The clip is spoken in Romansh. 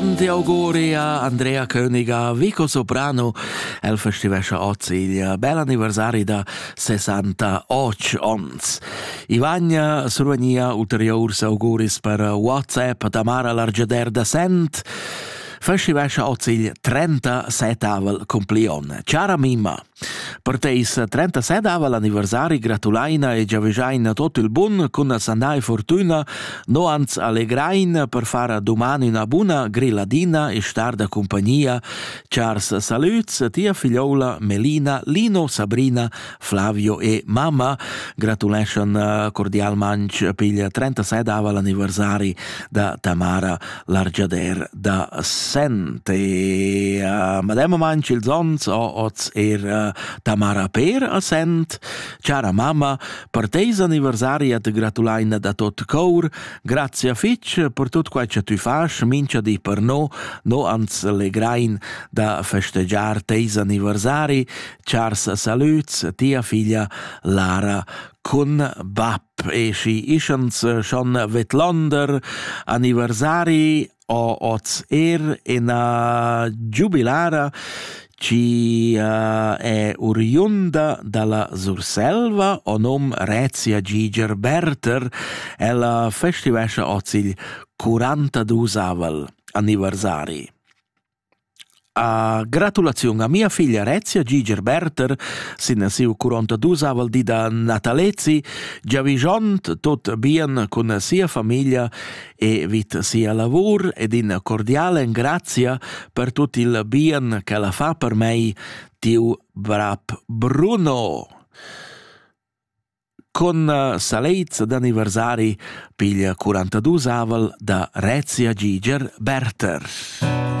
Ti auguria Andrea Königer, Vico Soprano, el festivescha oz il bel anniversari da 68 ons. Ivagna survegnia ulteriurs auguris per WhatsApp Tamara Largeder da Sent, festivescha oz il 37 cumplion. Cara Mima! Per teis 37 anniversari gratulaina e giavüschaina tot il bun cun la sanà e fortüna, no ans allegrain per far a duman üna buna grilladina e star da cumpagnia chars salüds a tia figlioula Melina, Lino, Sabrina, Flavio e mamma, gratuleschan eh, cordialmanch pigl 37 anniversari da Tamara l'argiader da Sent e uh, mademma manch ils ons o oz er uh, Tamara Per a Sent cara mamma per teis anniversaria te gratulaina da tot cour grazie fitch per tot quai che tu fasch mincha di per no no ans legrain da festegiar teis anniversari chars salüts tia figlia Lara cun bap e schi ischans schon vedlonder anniversari o hoz eir ina giubilara chi uh, è oriunda dalla Surselva o nom Rezia Giger Berter. Ella festivescha hoz il 42 anniversari. Gratulaziun a mia figlia Rezia Giger Berther sin siu quarantadusavel di da natalezi, giavischond tut bien cun sia famiglia e vid sia lavur ed in cordial engrazia per tut il bien ch'ella fa per mei, tiu brat Bruno. Con salets d'anniversari piglia quarantadusavel da Rezia Giger Berther.